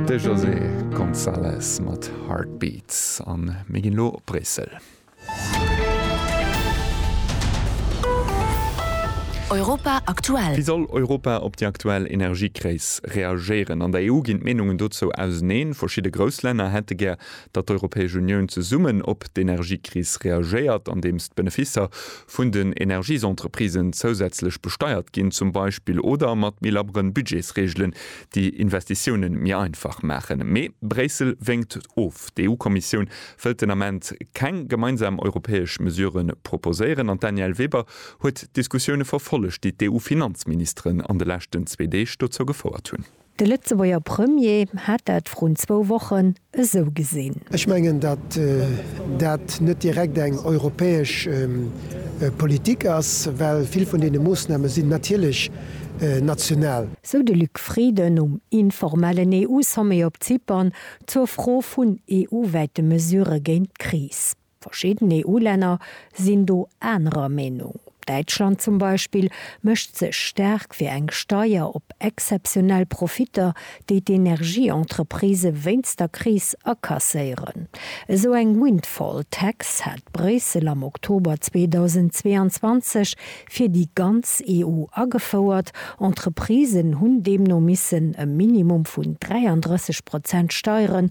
De José González mat Heartbeats a mir ginn elo op Bréissel. Europa aktuell. Wéi soll Europa op déi aktuell Energiekris reagéieren? An der EU ginn d'Meenungen dozou auseneen. Verschidde grouss Länner hätte gär, datt d'Europäesch Unioun zesummen op d'Energiekris reagéiert, andeems d'Beneficer vun den Energiesentreprisen zousätzlech besteiert ginn zum Beispill oder mat méi labberen Budgetsreegelen déi Investitiounen méi einfach maachen. Mee Bréissel wénkt of. D'EU-Kommissioun wëllt den Ament keng gemeinsam europäesch Mesuren proposéieren an d'Danièle Weber huet d'Diskussioune verfollegt, déi d'EU-Finanzministeren an de leschten zwee Deeg dozou gefouert hunn. De Lëtzebuerger Premier hat dat vrun zwou Wochen esou gesinn. Ech mengen, datt dat net direkt eng europäesch Politik ass, well vill vun deene Moossname sinn natierlech national. Sou de Luc Frieden um informellen EU-Sommet op Zypern zur Fro vun EU-wäite Mesurë géint d'Kris. Verschidden EU-Länner sinn do anerer Meenung. Däitschland zum Beispill mécht sech staark fir eng Steier op exzeptionell Profitter, déi d'Energie-Entreprisë wéinst der Kris akasséieren. Esou eng Windfall Tax hat Bréissel am Oktober 2022 fir déi ganz EU agefouert. Entreprisen hunn deemno missen e Minimum vun 33 Prozent Steieren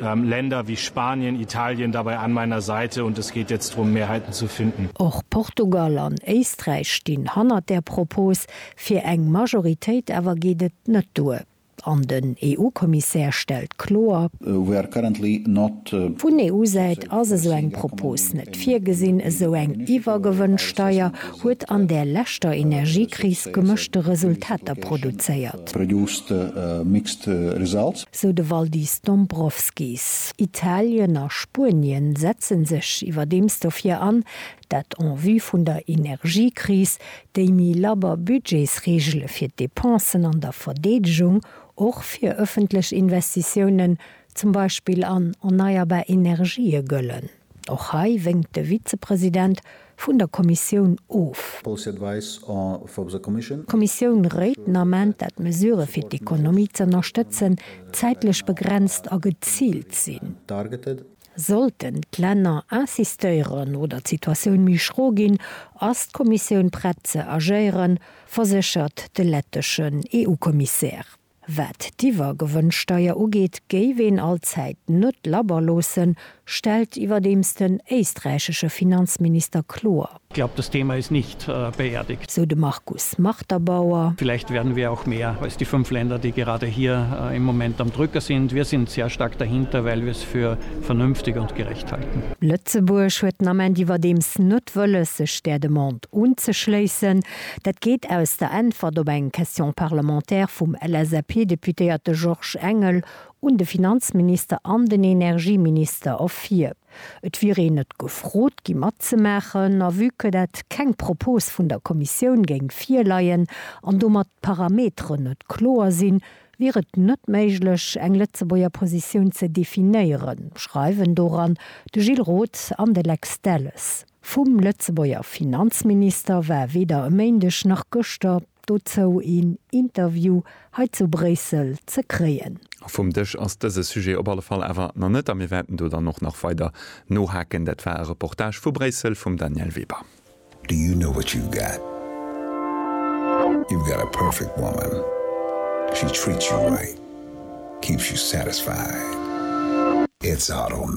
Länder wie Spanien, Italien dabei an meiner Seite und es geht jetzt drum Mehrheiten zu finden. Och Portugal an Éisträich stinn hannert där Propos fir eng Majoritéit, awer geet et net duer an den EU-Kommissär stellt kloer, We are currently not. Vun EU-Säit ass esou eng Propos net virgesinn. Esou eng Iwwergewënnsteier huet an där leschter Energiekris gemëschte Resultater produzéiert. sou de Valdis Dombrovskis. Italien a Spuenien setzen sech iwwerdeems dofir an, dat en vue vun der Energiekris, déi méi labber Budgetsreegele fir d'Depensen an der Verdeedegung, och fir ëffentlech Investitiounen, zum Beispill an erneierbar Energië, gëllen. Och hei wénkt de Vizepresident vun der Kommissioun of. D'Kommissioun réit den Ament, dat d'Mesurë fir d'Ekonomie z'ënnerstëtzen zäitlech begrenzt a geziilt sinn. Sollten d'Länner insistéieren oder d'Situatioun méi schro ginn, ass d'Kommissioun prett ze agéieren, verséchert de letteschen EU-Kommissär. Wat d'Iwwergewënnsteier ugeet, géif een allzäit net labber loossen, stellt iwwerdeems den éisträichesche Finanzminister kloer. Ich glaube, das Thema ist nicht beerdigt. Sou de Markus Marterbauer. Vielleicht werden wir auch mehr als die fünf Länder, die gerade hier im Moment am Drücker sind. Wir sind sehr stark dahinter, weil wir es für vernünftig und gerecht halten. Lëtzebuerg huet den Ament iwwerdeems net wëlles, sech där Demande unzeschléissen. Dat geet aus der Äntwert op eng Question parlementaire vum LSAP-Deputéierte Georges Engel un de Finanzminister an den Energieminister ervir. Et wier een net gefrot gi matzemaachen a vue que dat keng Propos vun der Kommissioun géing virleien an domat d'Parameteren net kloer sinn, wier et net méiglech eng Lëtzebuerger Positioun ze definéieren, schreiwen doran de Gilles Roth an de Lex Delles. Vum Lëtzebuerger Finanzminister war weder e Méindeg nach gëschter dozou een Interview hei zu Bréissel ze kréien. Vum Dësch ass dëse Sujet op alle Fall awer nach net a mir wäerten do dann och nach weider nohaken. Dat war e Reportage vu Bréissel vum Danièle Weber. Do you know what you've got? You've got a perfect woman. She treats you right, keeps you satisfied. It's Auto.